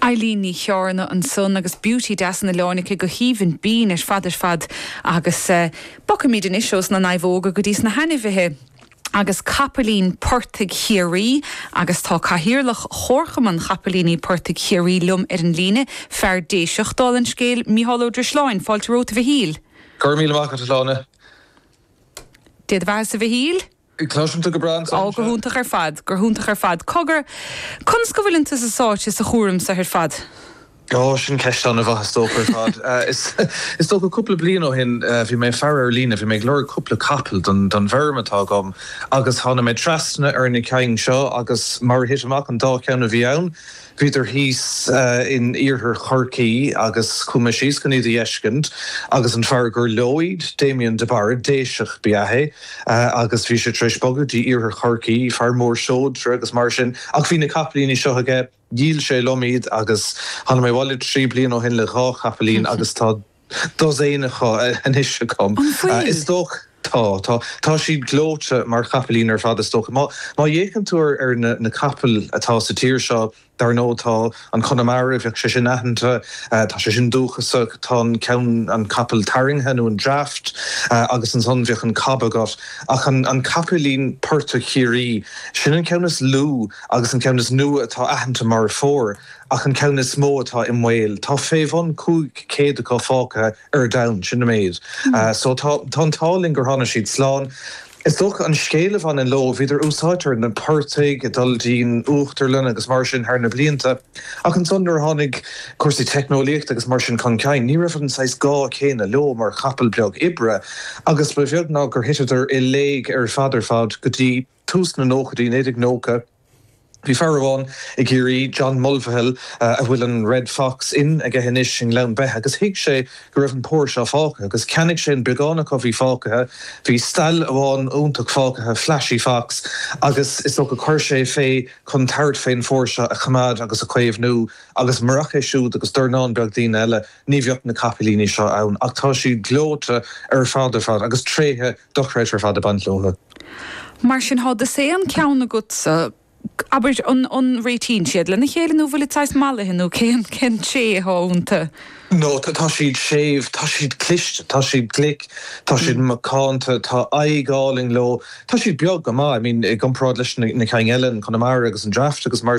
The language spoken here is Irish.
Eilín Ní Chearna ansan agus Beauty Deas an Oileáin aici go haoibhinn binn ar fad ar fad agus eh bogfaimíd anois ós na naomhóga go dtí sna hAinmhithe agus Capaillín Portaigh Chiarraí agus tá Cathaoirleach Chomharchumann Chapaillíní Portaigh Chiarraí liom ar an líne, fear Déiseach dála an scéil, Micheál Ó Drisleáin, fáilte romhat a Mhichíl. Go raibh míle maith agat a Shláine. D'fhéadfadh a bheith as a Mhichíl? Cloisim tú go breá anso. Ó, go hiontach ar fad, go hiontach ar fad. Cogar, conas go bhfuileann tusa sáite sa chúram so ar fad? Ó, sin ceist an-mhaith, is dócha ar fad. Is dócha cúpla bliain ó shin bhí mé ag faire ar líne, bhí mé ag lorg cúpla capall don bhfeirm atá agam agus tháinig mé trasna ar na cinn seo agus mar a thit amach an dá cheann a bhí ann, Bhíodar thíos in iarthar Chorcaí agus chuaigh mé síos chun iad a fheiscint agus an fear gur leo iad, Damien de Barra, Déiseach ba ea é agus bhí sé tar éis bogadh dtí iarthar Chorcaí, fear mór seodra agus mar sin ach bhí na capaillíní seo aige, dhíol sé liom iad agus tháinig mé abhaile trí bliana ó shin le dhá chapaillín agus tá. dosaen acu anois agam. An bhfuil? Is dócha, tá, tá. Tá siad gleoite mar chapaillín ar fad is dócha. Má, má fhéachann tú ar, ar na, na capaill atá sa tír seo, dar ndóigh tá an Connemara, bheadh sé sin aitheanta, tá sé sin dúchasach, tá an ceann, an capall tarraingthe nó an draught agus ansan bheadh an cob agat. Ach an, an capaillín portaigh Chiarraí, sin an ceann is lú agus an ceann is nua atá aitheanta mar phór. Ach an ceann is mó atá i mbaol, tá fé bhun 500 acu fágtha ar domhan, sin an méid. So tá an t-ádh linn gur tháinig siad slán. Is dócha an scéal a bhaineann leo, bhíodar úsáidte ar na portaigh ag dul dtí'n uachtarlann agus mar sin thar na blianta. Ach ansan nuair a tháinig cúrsaí teicneolaíochta agus mar sin chun cinn, ní raibh an saghas gá céanna leo mar chapall beag oibre agus ba bheag ná gur thiteadar i léig ar fad ar fad go dtí tús na nóchaidí, 1990, bhí fear amháin i gCiarraí, John Mulvihill, a bhfuil an Red Fox Inn aige anois i nGleann Beithe, agus thuig sé go raibh an pór seo fágtha, agus cheannaigh sé an beagán acu a bhí fágtha. Bhí stail amháin iontach fágtha, Flashy Fox, agus is dócha chuir sé é fé chun tabhairt fén phór seo a choimeád agus a chaomhnú, agus marach é siúd agus dornán beag daoine eile, ní bheadh na capaillíní seo ann. Ach tá siad gleoite ar fad ar fad, agus tréithe. dochreidte ar fad ag baint leo. Mar sin thá dosaen ceann agatsa, abair, an réitíonn siad lena chéile nó bhfuilid saghas mallaithe nó cén tréithe atá ionta? No, tá siad séimh, tá siad cliste, tá siad glic, tá siad macánta, tá aghaidh álainn leo, tá siad beag go maith, I mean, i gcomparáid leis na cinn eile, an Connemara agus an draught agus mar.